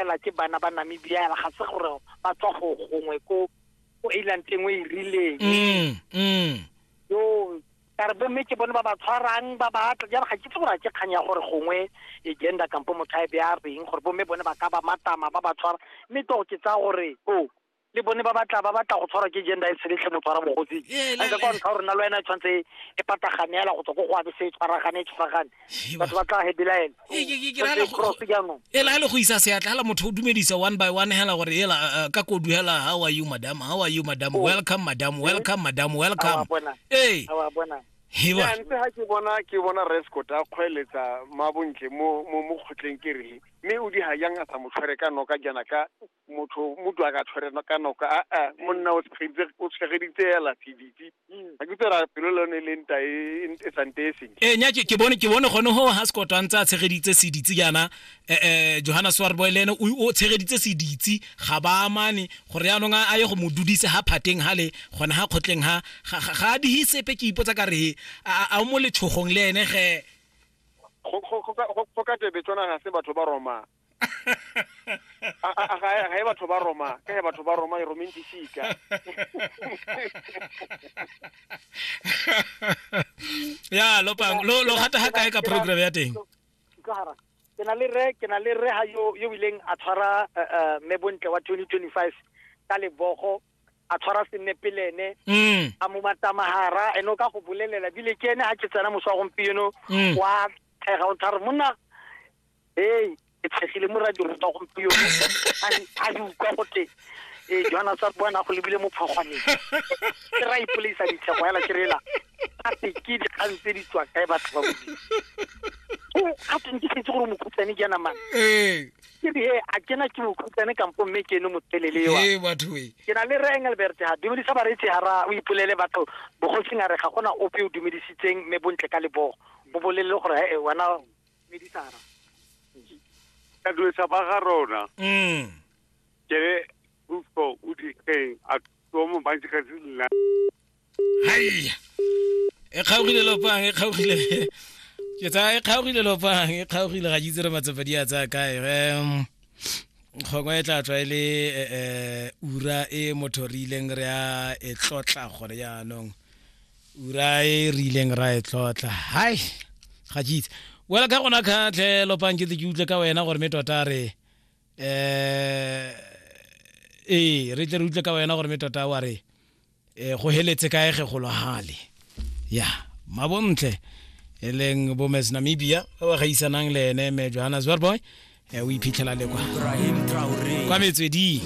fela ke bana ba namibia ga se gore ba tswa go gongwe ko ko island e nngwe e rileng mm, mm. yo ka re bomme ke bone ba ba tshwarang ba ba atla jalo ga ke tse gore ke kgang ya gore gongwe e gender kampo motho a e beya reng gore bomme bone ba ka ba matama ba ba tshwara mme to ke tsa gore o le bone ba batla ba batla go tshwarwa ke gender e seletlhe motho wa rabogosi Ee, la- a kwa ntlha gore nna le wena e tshwanetse e patagane yala go tswa ko go abe se e tshwaragane e tshwaragane Ee, batho ba tla hebelaela Ee, ke- ke- ke ra le go- cross jaanong ela le go isa seatla hela motho o dumedisa one by one hela gore ela uh, uh, ka kodu hela how are you madam how are you madam Oh. welcome madam welcome madam welcome Awa, bona. ee a wa bona hewa Ya, ntse ha ke bona ke bona rescot a kgweletsa mabontle mo mo mo kgotleng ke re mme o di hayang a sa mo tshwere ka noka jana ka motho mo dwa ka tshwereno ka noko a a monna o tshegeditse o tshegeditse ya latiditse ga ke tsara pelo le yone le nta e e sante e seng e nya ke ke bone ke bone gone ho ha sekotho a ntse a tshegeditse seditse jaana eh, eh, johanna swarboy le ene o o tshegeditse seditse ga ba amane gore yaanong a a ye go mo dudise ha phateng ha le gone ha kgotleng ha ga- ga ga a dihe sepe ke ipotsa ka re a a- a o mo letshogong le ene ge go- go- go ka- go- go ka tebe tsona ga se batho ba romang ga e batho ba roma ka e batho ba roma e romeng disika ya lo pang lo lo gata ga kae ka program ya teng ke na le re ke na le re ha yo yo ileng a tshwara eh, eh, me bontle wa 2025 ka lebogo a tshwara senepelene mm. a mo matamahara eno ka go bolelela bile ke ene a ke tsena moswa gompieno mm. wa thega o thare monna ee ke tshegile mo radio rutwa gompieno a di utlwa gote ee joana sa boana go lebile mo phogwaneng ke ra ipolaisa ditlhego fela ke rela gape ke dikgang tse di tswa kae batho ba bodimo gape ke setse gore mokhutsane ke yana mane ee ke re he a kena ke mokhutsane kampo mme ke ene motelele ewa ee batho e ke na le re engelbert ha dumedisa bareetsi hara o ipolele batho bogosing a re ga gona ope o dumedisitseng mme bontle ka lebogo o bolelele gore he wena medisara kadulesa ba ga rona mm kere ufo o dikeng a tomo ba ntse ka se nna hai e kgaogile lopang e kgaogile ke tsaya e kgaogile lopang e kgaogile ga jitse re matsopa di a tsaya kae um kgongwe e tla tswa e le eh, eh, ura e motho re ileng re a e tlotla gore jaanong ura e re ileng ra e tlotla hai ga ke itse wela ka gona kgatlhelo pankete ke utlwe ka wena gore me tota re um ee re tle re utlwe ka wena gore me tota wa re um go heletse kae ge gologale ya mabontle e leng bomes namibia ba ba gaisanang le ene me johannesburg boy um o iphitlhela le kwa kwa metsweding